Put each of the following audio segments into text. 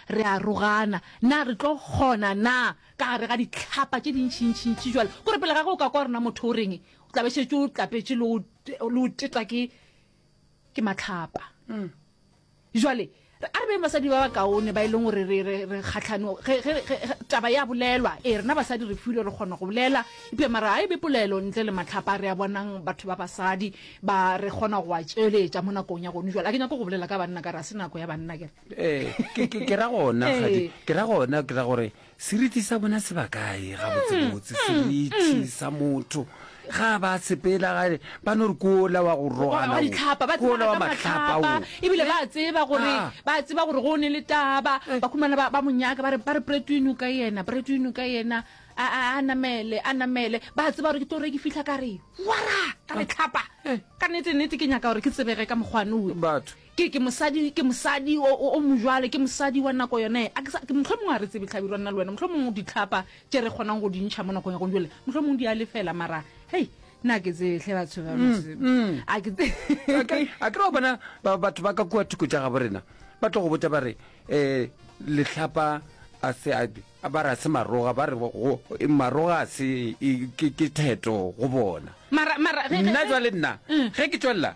Re arogana. Na re tlo kgona na? Ka gare ga dihlapa tše dintšintšintši bjale. Kore pele ga ge o ka kwa gore na motho o reng, o tla be šetše o tlapetše le o, le o teta ke, ke mahlapa. Bjale, re, a re beng basadi ba bakaone ba e leng gore re, re, re kgahlano, ge, ge, ge, ge taba ya bolelwa. Ee, rena basadi re filwe re kgona go bolela, eupša mara ga e be polelo ntle le mahlapa. Re a bonang batho ba basadi ba, re kgona go a tšweletša mo nakong ya gonu bjale. Ga ke nyake go bolela ka banna ka re ga se nako ya banna, ke re. ee ke- ke ke ra gona kgadi ke ra gona ke ra gore seriti sa bona se ba kae ga botsebotse seriti sa motho ga ba sepela ga ba no re kola wa go rogana wa ditlhapa ba kola wa matlhapa o ebile ba tseba gore Ah. ba tseba gore go ne le taba ba khumana ba ba monyaka ba re ba re pretwino ka yena pretwino ka yena a a a namele a namele ba tseba gore ke tore ke fihla ka re wara ka re tlhapa ka nete nete ke nyaka gore ke tsebege ka mokgwane o batho Ke, ke mosadi, ke mosadi o, o, o mojwalo, ke mosadi wa nako yona ye. A ke sa, mohlomongwe ga re tsebe, Hlabirwa, nna le wena, mohlomongwe dihlapa tše re kgonang go di ntšha mo nakong ya gone jwale, mohlomongwe di a lefela, mara, hei, nna ke tsebe, hle batho ba, a ke tse. A ke, a ke re wa bona, ba, batho ba ka kua thoko tša gabo rena, ba tlo go botša ba re, um lehlapa a se, a, a ba re a se maroga, ba re go, maroga a se, e, ke, ke theto go bona. Mara, mara, ge, ge, ge. Nna jwale nna, ge ke tšwelela.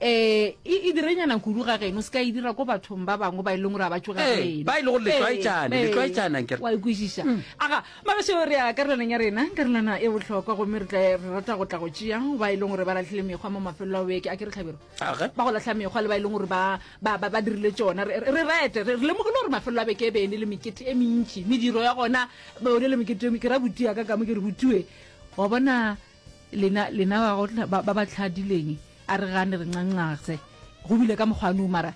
Ee, e, e direnyana kudu ga geno, se ka e dira ko bathong ba bangwe ba e leng gore a ba tšoga Ee, geno. ba e le gore le tlwaetšane, le Ee, tlwaetšana, nkere. wa e kwešiša a ga magašo re ya karelaneng ya rena karelana e bohlokwa gomme re tla re rata go tla go tšea ba e leng gore ba latlhile mekgwa mo mafelelo a beke a ke re tlhabiro Age. ba go latlha mekgwa le ba e leng gore ba ba- ba- ba dirile tšona re re- re rete re re lemogile gore mafelelo a beke e be e ne le mekete e mentši mediro ya gona ba o ne le mekete e me- ke ra botia ka kamo ke re botue wa bona lena lena ba go tla- ba ba ba tlhadileng a re gane re ncancaxe go bile ka mokgwa nong mara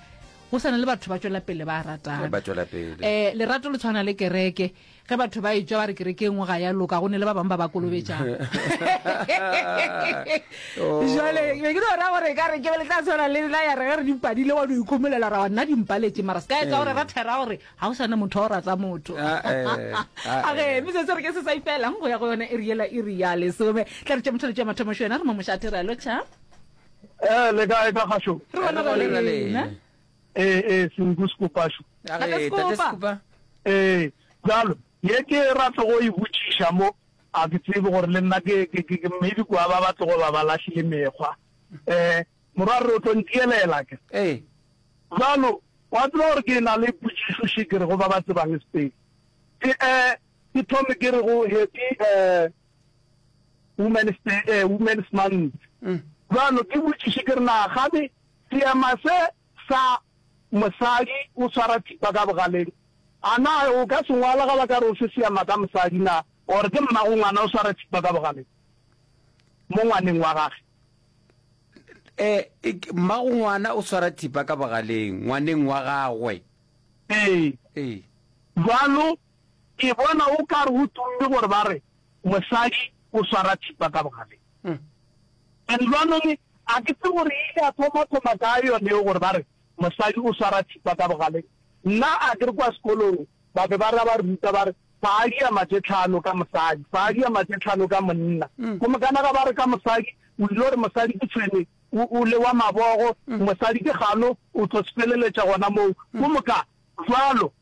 go sana le batho ba tšwela pele ba ratana ba tšwela pele eh lerato le tshwana le kereke ge batho ba e tšwa ba re kereke e nngwe ga ya loka go ne le ba bangwe ba ba kolobetšang Oh. jale be ke no ra gore ka re ke le tla tshwana le la ya re ge re dipadile wa no ikhomolela ra wa nna dimpaletše mara se ka etsa gore ra thera gore ga o sana motho wa o rata motho ah, eh, ah, age eh. metsotso re ke se sa ifelang go ya go yone e riela e ria lesome tla re tša motho le tša mathomo xo yena re mo mošate re a lotšha ee le kae ka gaxo re bona ba lena ee ee senku sekopaxo ee jalo ye ke ratlo go e botšiša mo a ke tsebe gore le nna ke maybe kua ba batlo go ba ba lahlile mekgwa um Morwa, re o tlo nteelela ke? Ee. Bjalo, wa tseba gore ke na le potšišo še ke re go ba ba tsebang Spain. Ke, eh, ke thome ke re go Happy, eh, Women's Day, eh, Women's Month. Bjalo, ke botšiše ke re na kgane seema se sa mosadi o swara thipa ka bogaleng, a na o ka se ngwala ga ba ka re o se seema ka mosadi na, or ke mmagongwana o swara thipa ka bogaleng mo ngwaneng wa gage? eh mmago ngwana o swara thipa ka bogaleng ngwaneng wa gagwe ee ee bjalo ke bona o ka re go tumme gore ba re mosadi o swara thipa ka bogaleng Mm. and lwanong a ke tse gore e ile a thoma thoma ka yone eo gore ba re mosadi o swara thipa ka bogaleng nna a ke re kwa sekolong Ba be ba ra ba ruta ba re, Padi ya matše tlhano ka mosadi, padi ya matše tlhano ka monna. Komokana ga ba re ka mosadi, o ile gore mosadi ke tshwene, o, o le wa mabogo, mosadi ke gano, o tlo sepeleletša gona moo. Komoka, jwalo.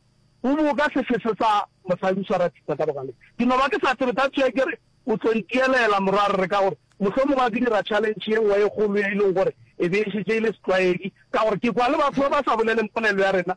O bo o ka se fese sa, mosadi o swara thipa ka bogaleng. Ke no ba ke sa tsebe, that's why ke re, o tlo ntielela, morwa Rre, ka gore mohlomongwe a ke dira challenge ye nngwe e kgolo ye e lego gore e be e šetše e le setlwaedi, ka gore ke kwa le batho ba ba sa boleleng polelo ya rena,